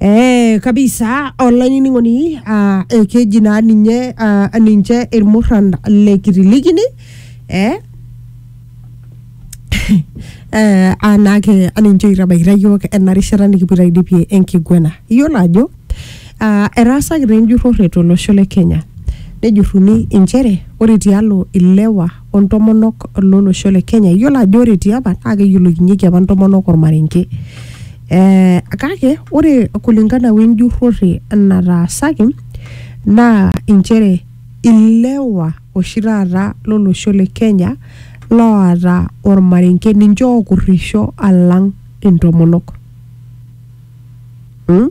Eh, kabisa olainining'oni ah, eh, keji naa ninye ah, ninche irmurran le kitilikini eh, eh, anake aninche oitabaikita yiok ena rishata nikipoito aidipie enkiguena iyiolo ajo ah, etaasaki taa enjurrore tolosho le kenya nejurruni inchere ore tialo ilewa o ntomonok lolosho le Kenya. Iyiolo ajo ore tiapa naa keyiolokinyeki apa ntomonok ormarenke. Eh, kake ore kulingana we njurrore nataasaki naa inchere ilewa oshi taata lolosho le Kenya loota ormarenke ninche okurrisho alang intomonok mm?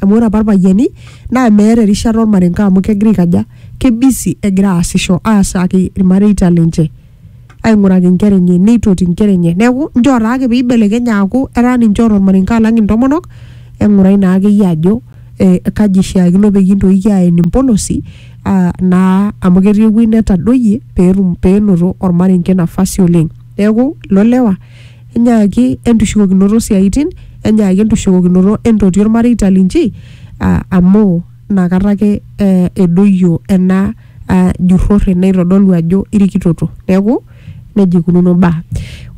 amu ore apa irpayiani naa meeta erishata ormarenke amu kegira aikaja kebisi egira aasisho aasaki irmareita lenche aing'uraki inkera enye neitoti inkera enye neeku njoo taake peibelekenya aaku etaa ninche oota ormarenke alang intomonok eng'urai naa akeyie ajo eh, kaji ishiakino peyie intoki aen impolosi ah, naa amu ketii ewueji netadoyie peetum peenoto ormarenke nafasi oleng neeku ilo lewa enyaaki entushukokinoto osiaaitin, enyaaki entushukokinoto entoti olmareita linchi aa amu nakata ake ee edoyio ena aa jurrore naitodolu ajo irikitoto. Neeku neija eikununo imbaa.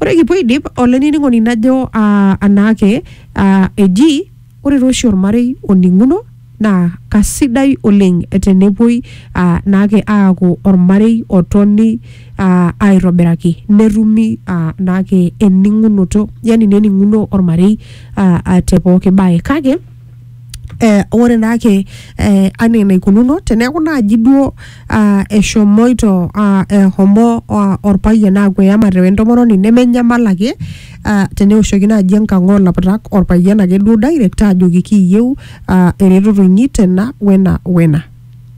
Ore kipuo aidip olainining'oni najo aa anaake aa eji. Ore taa oshi olmarei oning'uno naa kasidai oleng tenepuoi aa, naake aaku olmarei otoni aa, aitobiraki netumi aa, naake ening'unoto yani nening'uno olmarei aa, aa te pooki bae kake eh, ore naake eh, anaa enaikununo teneeku naaji duo ah, eshomoito ah, ehomo ah, olpayian aaku eyamate wentomononi nemenyamal ake ah, teneoshoki naaji enkang oolaputak orpayian ake duo direct aajoki kiiyieu ah, eretoto inyi tena wena wena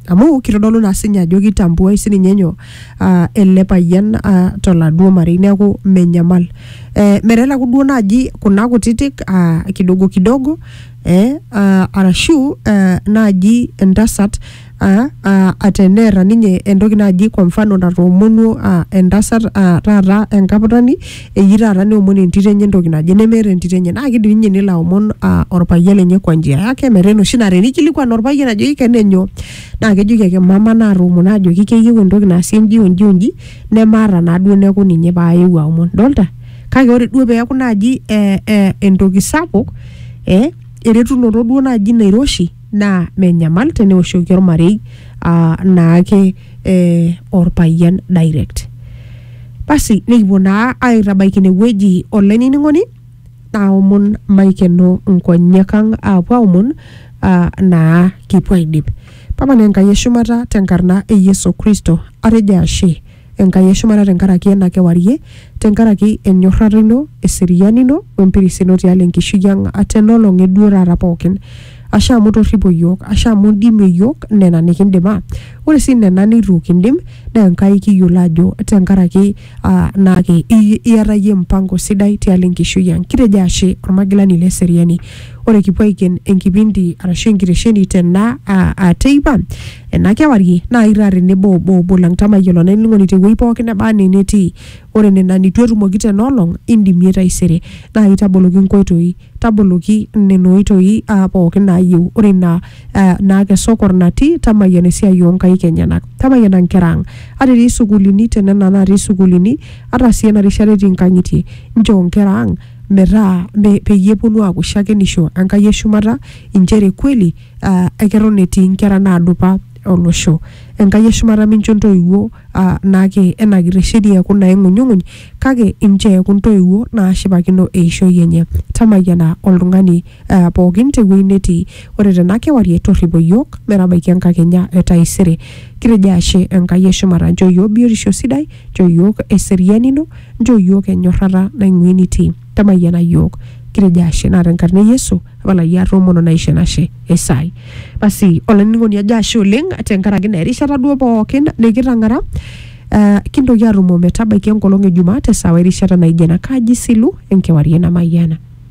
amu kitodolu naa sinye ajo kitambuai sininye nyoo ah, ele payian ah, toladuo marei neeku menyamal eh, meteleku duo naaji kuna kutitik ah, kidogo kidogo eh, ah, arashu eh, naaji entasat aa aa ateneeta ninye entoki naji kwa mfano natoomonuo aa entasat aa taata enkaputani eji taata neomon entito enye entoki naje nemeeta entito enye naa kidim ninye nelo aomon aa orpayian lenye kwa njia yake metaa enoshi naa tenikilikuan orpayian ajoki kene enyoo naa kejoki ake mama natoomono ajoki keyieu entoki naasi enji o nji o nji nemaata naa duo neeku ninye paayewuo aomon idolta kake ore duo peeku naaji ee ee entoki sapuk ee eretunoto duo naaji nairoshi. naa menyamal teneoshoki ormarei ah, naake eh, orpayian direct basi nikipuo naa aitabaiki inewueji olainining'oni naomon maikeno nkonyek ang aapuo aomon ah, naa kipuo aidip papa naa enkai eshumata tenkarna e yesu kristo atejo ashe Enkai e shumata tenkaraki ena kewarie, tenkaraki enyorrata ino, eseriani ino, o empiris ino tialo enkishui ang ata ena olong e duo taata pookin. Ashe amu itorripo iyiook, ashe amu indimie iyiook nena nikindim. Ore sii nena neitu kindim naa Enkai kiyiolo ajo tenkaraki aa naake iyata iyie mpango sidai tialo enkishui ang. Kitejo ashe, Olmagilani le seriani. Ore kipuo aiken enkipindi arashu enkitesheni tena aa- aa teipa ena kewarie naa itaa tenebo obo obo lang tamayiolo olainining'oni tewueji pookin neba anaa enetii ore nena nitu etumoki tena olong indimie taisere naa itaboloki inkoitoi taboloki nena oitoi aa pookin naayieu ore ina aa, naa kesokor natii tamayiana esiai oonkaik enyenak tamayiana inkera ang ata etii isukuulini tenena natii isukuulini ata sii ena rishata etii inkang'itie inchoo inkera ang metaa me, peyie eponu aaku shakenisho Enkai eshumata inchere kweli uh, eketon etii inkera naadupa olosho. Enkai eshumata mincho intoiwuo uh, naake enakita sheria eeku naing'unyung'uny kake inchoo eeku intoiwuo naashipakino eishoi enye. Tamayiana oltung'ani uh, pookin tewueji netii. Ore tena kewarie torripo iyiook metabaiki enkakenya e taisere. Kitejo ashe Enkai eshumata, nchoo iyiook biotisho sidai, nchoo iyiook eseriani ino Njoo iyiook enyorrata naing'ua enitii. Tamayiana iyiook. Kitejo ashe naa tenkarna e Yesu apalaki atoomono naisho enashe. Esai. Basi olainining'oni ajo ashe oleng tenkaraki naa erishata duo pookin nikitang'ara. Uh, kintoki atumo metabaiki enkolong e Jumaa te sawa erishata naijo ena. Kaji isilu enkewarie namayiana.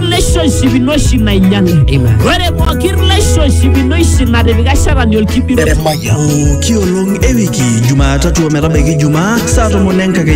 relationship ino oshi nainyale ore pooki relationship ino oshi natipika shetani olkibiro Pooki olong e wiki Jumatatu ometabaiki Jumaa saa tomon enkakenya